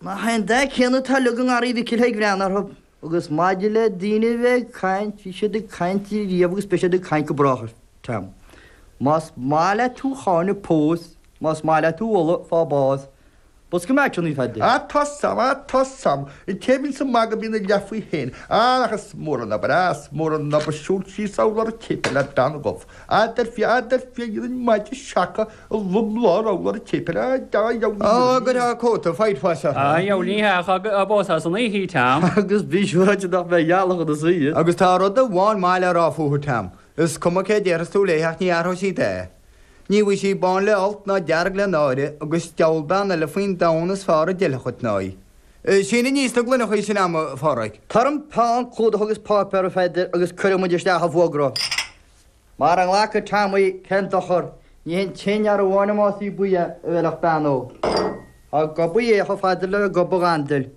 Mar sé an dath céanna atá leagan Gharraí Mhicil Thaidhg Bhreathnaigh orthu. Agus maidir le daoine a bheith ag caint, bhí siad ag caint riamh agus beidh siad ag caint go brách, a Tom. Más maith leat thú cháineadh, pós, más maith leat thú mholadh, faigh bás. Pós go mbeidh tú níos faide. Tá a fhios a'm, tá a fhios a'm, an té a bhíonns ag magadh bíonn a leath faoi féin. Ach ach is mór an obair, ah is mór an obair siúl síos urlár an tséipéil le bean dhubh, dar fia, dar fia, dhéanfainn maide seaca, Á, gur thá cóta faighte fáis orthu. Á, gheall ní hea ach pós san oíche í, Tam. Agus bí siúráilte nach mbeidh gealach ina suí. Agus tá rud amháin maith le rá fúthu, Tam, is cuma céard a déarfas tú léithe ach ní athróidh sí dath. Ní bhfaighidh sí bán le holc ná dearg le náire, agus diabhal bean eile faoin domhan is fearr a d'fheilfeadh dhuit ná í. Sín aníos na gloineachaí sin agam, a Phádraig. Tabhair dhom peann, clúdach agus páipéar, a Pheadair, agus cuirfidh muid isteach an fuagra. Mara nglacfaidh Tom í, cén dochar, ní hé an t-aon fhear amháin a mbásaí buí a bhfeilfeadh bean óg. Ag gobadh é chomh fada le gob an ghandail.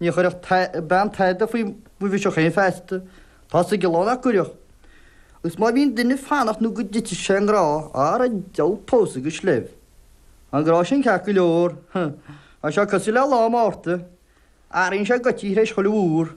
Ní chuirfeadh bean tada faoi bhiseach féin feasta, tá a fhios ag an lá nach gcuirfeadh. Agus má bhíonn duine ag fanacht nó go dtitfidh sé i ngrá, ara deabhal pósadh go sleibh. Tá an grá sin ceart go leor, tá sé cosúil le lá Márta, athraíonn sé goití tar éis chuile mhúr.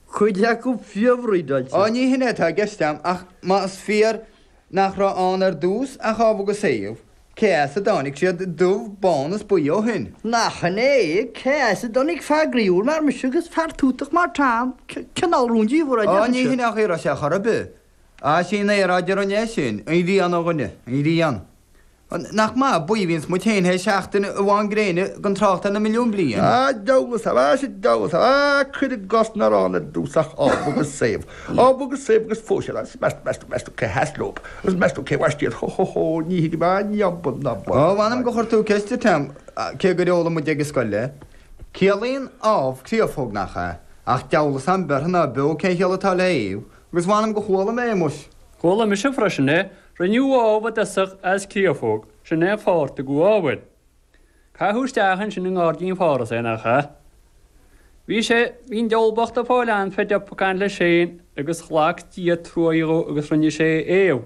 Cuid acu fiafraigh d'fháilte. Á ní shin é atá i gceist a'm ach má is fíor nach raibh ann ar dtús ach Ádhamh agus Éabha, cé as a dtáinig siad, dubh, bán is buí ó shin? Nach shin é, cé as a dtáinig fear groíúil mar mise agus fear tútach mar Tom, cineál rúndiamhair a d'fhéadfadh sé. Á ní shin é an chaoi a raibh sé ar chor ar bith. Is í an aeráid a rinne é sin, an ghrian, a dhuine, an ghrian. Nach maith a bhuíonns muid féin tar éis seachtain amháin gréine gan trácht ar na milliúin bliain. A Joseph, a Ais a Joseph, a cuir i gcás nach raibh ann ar dtús ach Ádhamh agus Éabha, Ádhamh agus Éabha agus phós siad agus meastú, meastú, meastú cé sheas leob agus meastú cé bhaist iad, hó, hó, hó, ní thuigim a ndiombail ná baol. Ó, mh'anam gur chuir tú ceist orm, cé gur fhoghlaim muid ag an scoil é. Ciallaíonn Ádhamh créafóg, nach ea? Ach deabhal a fhios a'm beirthe ná beo cén chiall atá le Éabha, Agus mh'anam gur chuala mé é, muis. Chuala mise freisin é, Rinneadh Ádhamh i dtosach as créafóg, sin é an fáth ar tugadh Ádhamh air. Caitheadh isteach ansin i nGairdín Pharthais é, nach ea? Bhí sé, bhí an diabhal bocht ag fáil anfeidh de phucáin leis féin agus ghlac Dia truaigh dhó agus rinne sé Éabha.